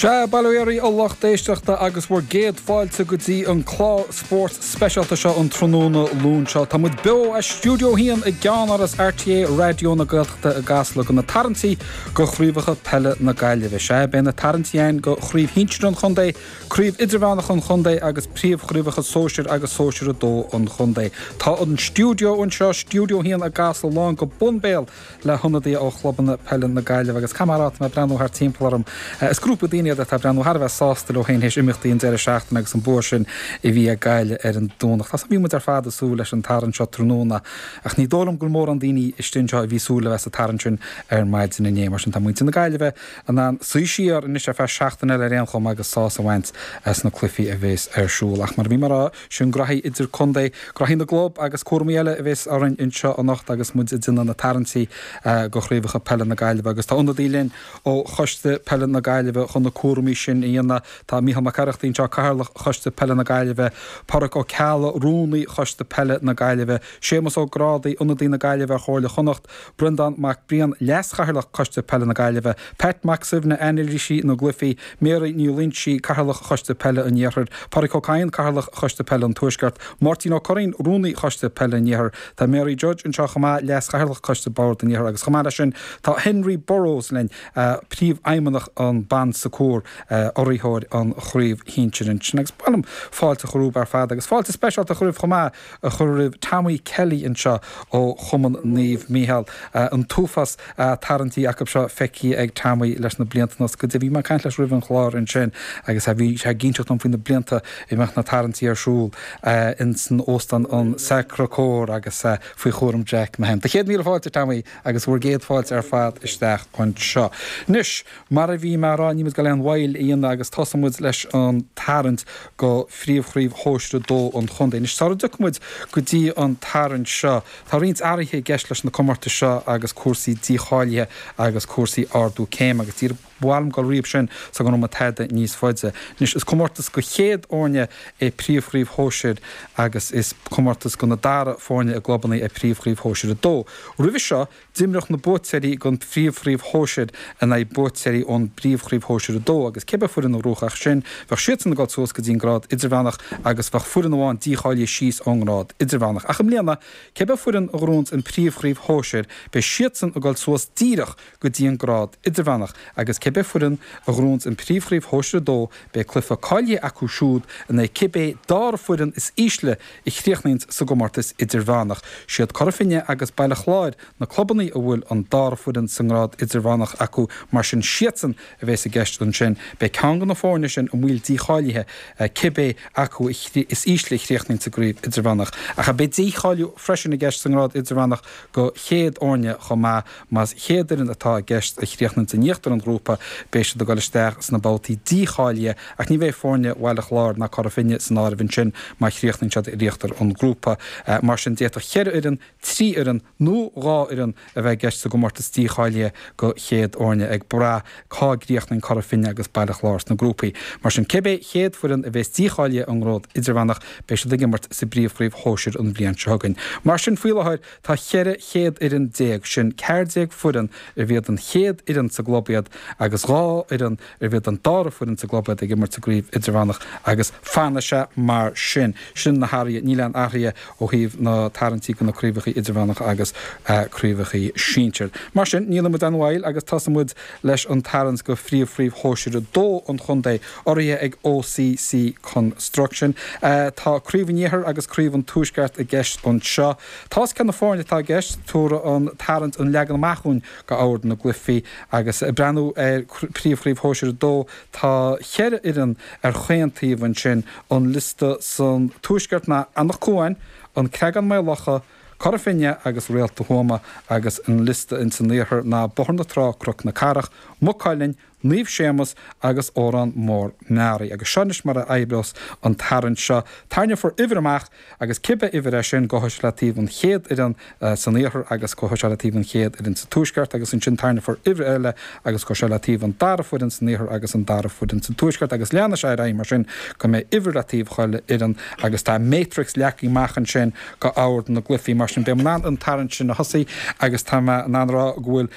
Sea, bail ó Dhia oraibh a lucht éisteachta, agus bhur gcéad fáilte go dtí an clár spóirt speisialta seo an tráthnóna Luain seo. Tá muid beo as Stiúideo 1 i gCeannáras RTÉ Raidió na Gaeltachta i gCasla go na tarraingtí go chraobhacha peile na Gaillimhe. Sea, beidh na tarraingtí ann go chraobh shinsir an chontae, craobh idirmheánach an chontae agus príomhchraobhacha sóisir agus sóisir 2 an chontae. Tá an stiúideo anseo, Stiúideo 1 i gCasla lán go bun béal le hionadaithe ó chlubanna peile na Gaillimhe agus cad mar atá mé ag breathnú thart timpeall orm. Is grúpa daoine iad atá ag breathnú thar a bheith sásta leo féin théis imeachtaí an deireadh seachtaine agus an bua sin a bhí ag Gaillimh ar an Domhnach. Tá súil, bhí muid ar fad ag súil leis an tarraingt seo tráthnóna ach ní dóigh liom gur mórán daoine istigh anseo a bhí ag súil le bheith sa tarraingt sin ar maidin inné. Mar sin tá muintir na Gaillimhe in ann suí siar anois ar feadh seachtaine eile ar aon chuma agus sásamh a bhaint as na cluichí a bhéas ar siúl. Ach mar a bhí mé a rá, Sin graithí idir-contae, graithí na gclub agus cúramaí eile a bheas orainn anseo anocht agus muid ag déanamh na tarraingtí go chraobhacha peile na Gaillimhe agus tá ionadaí linn ó Choiste Peile na Gaillimhe chun na cúramaí sin a dhéanamh. Tá Micheál Mac Oireachtaigh anseo, Cathaoirleach Choiste Peile na Gaillimhe, Pádraic Ó Ceallaigh, Rúnaí Choiste Peile na Gaillimhe, Séamus Ó Grádaigh, Ionadaí na Gaillimhe ar Chomhairle Chonnacht, Breandán Mac Briain, Leas-Chathaoirleach Coiste Peile na Gaillimhe, Pat Mac Suibhne, Anailísí na gCluichí, Mary Ní Loingsigh, Cathaoirleach Choiste Peile an Iarthair, Pádraig Ó Cadhain, Cathaoirleach Choiste Peile an Tuaisceart, Máirtín Ó Curraoin, Rúnaí Choiste Peile an Iarthair. Tá Mary Judge anseo chomh maith, Leas-Chathaoirleach Coiste Bord an Iarthair agus chomh maith leis sin tá Henry Burrows linn, Príomhfheidhmeannach an Bon Secours, urraitheoir an chraobh shinsir ansin. Agus ba mhaith liom fáilte a chur romhaibh ar fad agus fáilte speisialta a chur roimh chomh maith, a chur roimh Tommy Kelly anseo ó Chumann Naomh Mícheál. An t-uafás tarraingtí acu seo feicthe ag Tommy leis na blianta anuas. Go deimhin, bhí mé ag caint leis roimh an chlár ansin agus bhí sé ag inseacht dom faoi na blianta a mbíodh na tarraingtí ar siúl insan Óstán an Sacre Coeur agus faoi chúram Jack Mahon. Do chéad míle fáilte, Tommy, agus bhur gcéad fáilte ar fad isteach anseo. Anois. Mar a bhí mé a' rá, níl muid ag dul aon mhoill a dhéanamh agus tosóidh muid leis an tarraingt go phríomhchraobh shóisir 2 an chontae. Anois, sara dtiocfaidh muid go dtí an tarraingt seo, tá roinnt athraithe i gceist leis na comórtais seo agus cúrsaí dícháilithe agus cúrsaí ardú céime agus b'fhearr dhom dul tríothu sin sula ngabhfaidh mé tada níos faide. Anois, is comórtas go chéad fhoirne é príomhchraobh shóisir agus is comórtas go na dara foirne i gclubanna é príomhchraobh shóisir 2. Roimhe seo, D'imreodh na buaiteoirí den Phríomhchraobh Shóisir in aghaidh buaiteoirí ón bPríomhchraobh Shóisir 2 agus cé bith foireann a ghnóthódh as sin, bheadh siadsan ag dul suas go dtí an grád idirmheánach agus bheadh foireann amháin dícháilithe síos ón ngrád idirmheánach. Ach i mbliana, cé bith foireann a ghnóthaíonns an Príomhchraobh Shóisir, beidh siadsan ag dul suas díreach go dtí an grád idirmheánach agus cé bith foireann a ghnóthaíonns an Príomhchraobh Shóisir 2, beidh cluiche cáilithe acu siúd in aghaidh cibé dara foireann is ísle a chríochnaíonns sa gcomórtas idirmheánach. Siad Cora Finne agus Baile Chláir na clubannaí a bhfuil an dara foireann sa ngrád idirmheánach acu mar sin siadsan a bheas i gceist ansin. Beidh ceann go na foirne sin i mbaol dícháilithe cibé acu is ísle a chríochnaíonn sa gcraobh idirmheánach. Ach beidh dícháiliú freisin i gceist sa ngrád idirmheánach go chéad fhoirne chomh maith Más chéad fhoireann atá i gceist a chríochnaíonn in íochtar an ghrúpa, beidh siad ag dul isteach sna babhtaí dícháilithe ach ní bheidh foirne Bhaile Chláir ná Cora Finne san áireamh ansin má chríochnaíonn siad in íochtar an ghrúpa. Mar sin, d'fhéadfadh ceithre fhoireann, trí fhoireann nó dhá fhoireann a bheith i gceist sa gcomórtas dícháilithe go chéad fhoirne, ag brath cá gcríochnaíonn Cora Finne agus Baile Chláir sna grúpaí. Mar sin, cibé chéad foireann a bheas dícháilithe ón ngrád idirmheánach, beidh siad ag imirt sa bPríomhchraobh Shóisir an bhliain seo chugainn. Mar sin, faoi láthair, Tá cheithre chéad fhoireann déag, sin ceathair déag foireann arbh iad an chéad fhoireann sa gclub iad agus dhá fhoireann arbh iad an dara foireann sa gclub iad ag imirt sa gcraobh idirmheánach agus fanfaidh sé mar sin. Sin na hathruithe, níl aon athruithe ó thaobh na tarraingtí go na craobhachaí idirmheánacha agus craobhachaí sinsir. Mar sin, ní dhéanfaidh muid aon mhoill agus tosóidh muid leis an tarraingt go phríomh-phríomh shóisir a dó an chontae urraithe ag OCC Construction. Tá Craobh an Iarthair agus Craobh an Tuaisceart i gceist anseo. Tá a fhios cé na foirne atá i gceist, tabharfaidh an tarraingt an leagan amach dhúinn go ord na gcluifí agus breathnú ar Príomhchraobh Shóisir 2. Tá cheithre fhoireann ar chaon taobh ansin, an liosta san tuaisceart ná Anach Cuain, An Creagán-Maigh Locha, Cora Finne agus Réalta Thuama agus an liosta in san iarthar ná Bóthar na Trá, Cnoc na Cathrach, Maigh Cuilinn, Naomh Séamas agus Órán Mór Meáraí. Agus seo anois mar a oibreos an tarraingt seo. Tarraingeofar uimhir amach agus cibé uimhir é sin, gabhfaidh sé le taobh an chéad fhoireann san iarthar agus gabhfaidh sé le taobh an chéad fhoireann sa tuaisceart agus ansin tarraingeofar uimhir eile agus gabhfaidh sé le taobh an dara foireann san iarthar agus an dara foireann sa tuaisceart agus leanfaidh sé ar aghaidh mar sin go mbeidh uimhir le taobh chuile fhoireann agus tá matrix leagtha amach ansin go ord na gcluifí mar sin. Beidh mé in ann an tarraingt sin a thosaí agus tá mé in ann a rá go bhfuil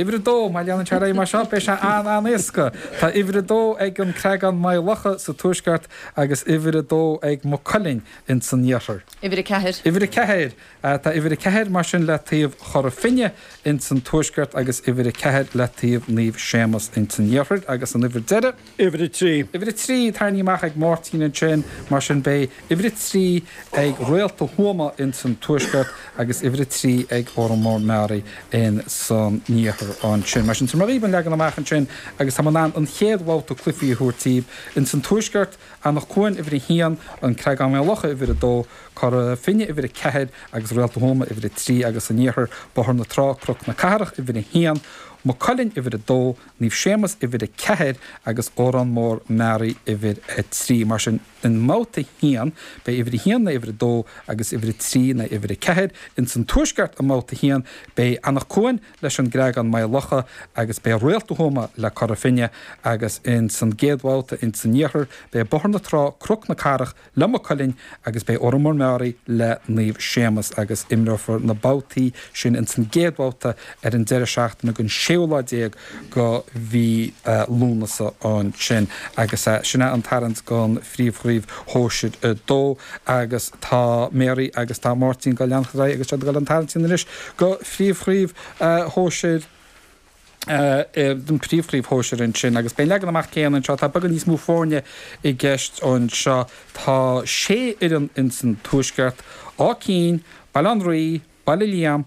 Uimhir a dó, má leanann sé ar aghaidh mar seo, beidh sé an-an-éasca. Tá uimhir a dó ag an Creagán Maigh Locha sa tuaisceart agus uimhir a dó ag Maigh Cuilinn ins an iarthar. Uimhir a ceathair. Uimhir a ceathair. Tá uimhir a ceathair mar sin le taobh Chora Finne ins an tuaisceart agus uimhir a ceathair le taobh Naomh Séamas ins an iarthar agus an uimhir deiridh, Uimhir a trí. Uimhir a trí, tarraingthe amach ag Máirtín ansin, mar sin beidh uimhir a trí ag Réalta Thuama in san tuaisceart agus uimhir a trí ag Órán Mór Meáraí in san iarthar ansin. Mar sin, sin mar a bhí an leagan amach ansin agus táim in ann an chéad bhabhta cluifí a thabhairt díbh. In san tuaisceart, Anach Cuain uimhir a haon, An Creagán Maigh Locha uimhir a dó, Cora Finne uimhir a ceathair agus Réalta Thuama uimhir a trí agus san iarthar, Bóthar na Trá, Cnoc na Cathrach uimhir a haon, Maigh Cuilinn uimhir a dó, Naomh Séamas uimhir 4 agus Órán Mór Meáraí uimhir 3. Mar sin, i mBabhta 1, beidh uimhir 1 in aghaidh uimhir 2 agus uimhir 3 in aghaidh uimhir 4. Ins an Tuaisceart i mBabhta 1, beidh Anach Cuain leis an Gcreagán Maigh Locha agus beidh Réalta Thuama le Cora Finne agus ins an gcéad bhabhta ins an Iarthar, beidh Bóthar na Trá, Cnoc na Cathrach, le Maigh Cuilinn agus beidh Órán Mór Meáraí le Naomh Séamus agus imreofar na babhtaí sin ins an gcéad bhabhta ar an deireadh seachtaine den séú lá déag de mhí Lúnasa ansin agus sin é an tarraingt don phríomhchraobh shóisir 2 agus tá Mary agus tá Máirtín ag dul ag leanacht ar aghaidh agus siad ag dul an tarraingt sin anois do phríomhchraobh shóisir an Príomhchraobh Shóisir ansin agus beidh an leagan amach céanna anseo. Tá beagán níos mó foirne i gceist anseo, tá sé fhoireann insan tuaisceart, Áth Cinn, Baile Átha an Rí, Baile Liam,